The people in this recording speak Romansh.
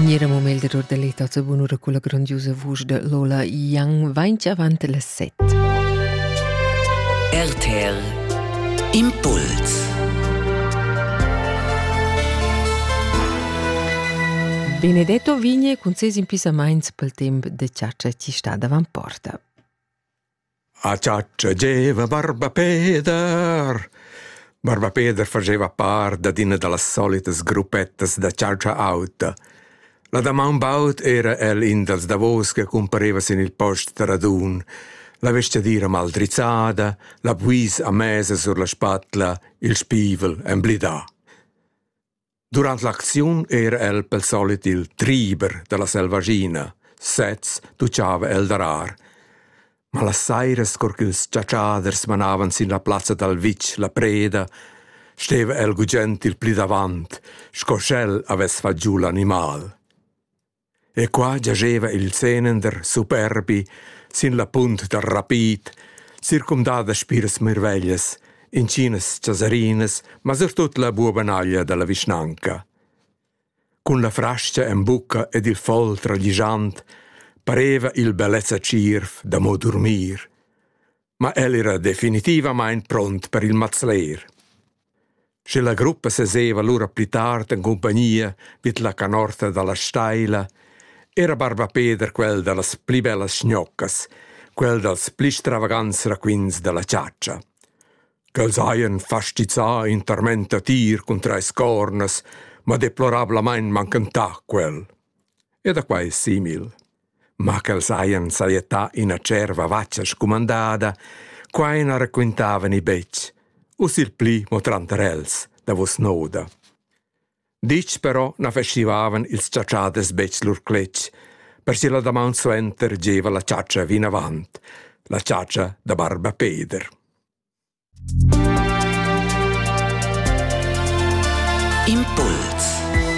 Gnera moment d'error da l'etazza bunura cu la grandiosa vusch da Lola Young vainch avant las set. RTL Impuls Benedetto vigne concess impissamaints pel temp de chargia chi sta davant porta. A chatscha gieva barba Peder. Barba Peder fageva part dad üna da las solitas gruppettas da chatscha auta. La damaun baud era el in dals davos che cumpareva sin il post da radun. La vestgadira maldrizzada, la buis a mesa sur la spatla, il spievel emblidà. Durant l'acziun era el pel solit il triber da la selvaschina, sez tuchava el darar. Ma las sairas, cur ch'ils chatschaders manavan sin la plazza dal vitg la preda, steva el gugent il pli davant, sco sch'el avess fat giu l'animal. E qua giascheva il senender superbi sin la punt da rapid, circumdà da spiras mirveglias, intginas chasarinas, ma surtut la buobanaglia dalla vischnanca. Cun la frascha en bucca ed il foll tragligiant pareva il bellezza tschierv da mo durmir. Ma el era definitivamain pront per il mazler. Sche la gruppa seseva lura pli tard en cumpagnia vid la canorta dalla steila, era barba Peder quel dallas pli bellas schnoccas, quel dals pli stravagants raquints dalla chatscha. Quels hajan fastizzà in tormenta tir cun treis cornas, ma deplorablamain manchentà quel. E da quai simil. ma ch'els hajan sajettà ina tscherva vatga scumandada, quai na raquintavani betg, u sil pli mo tranter els, davos noda. Ditg però na feschivavan ils chatschaders betg lur cletg, per che la damaun suenter gieva la chatscha vinavant, la chatscha da barba Peder. Impuls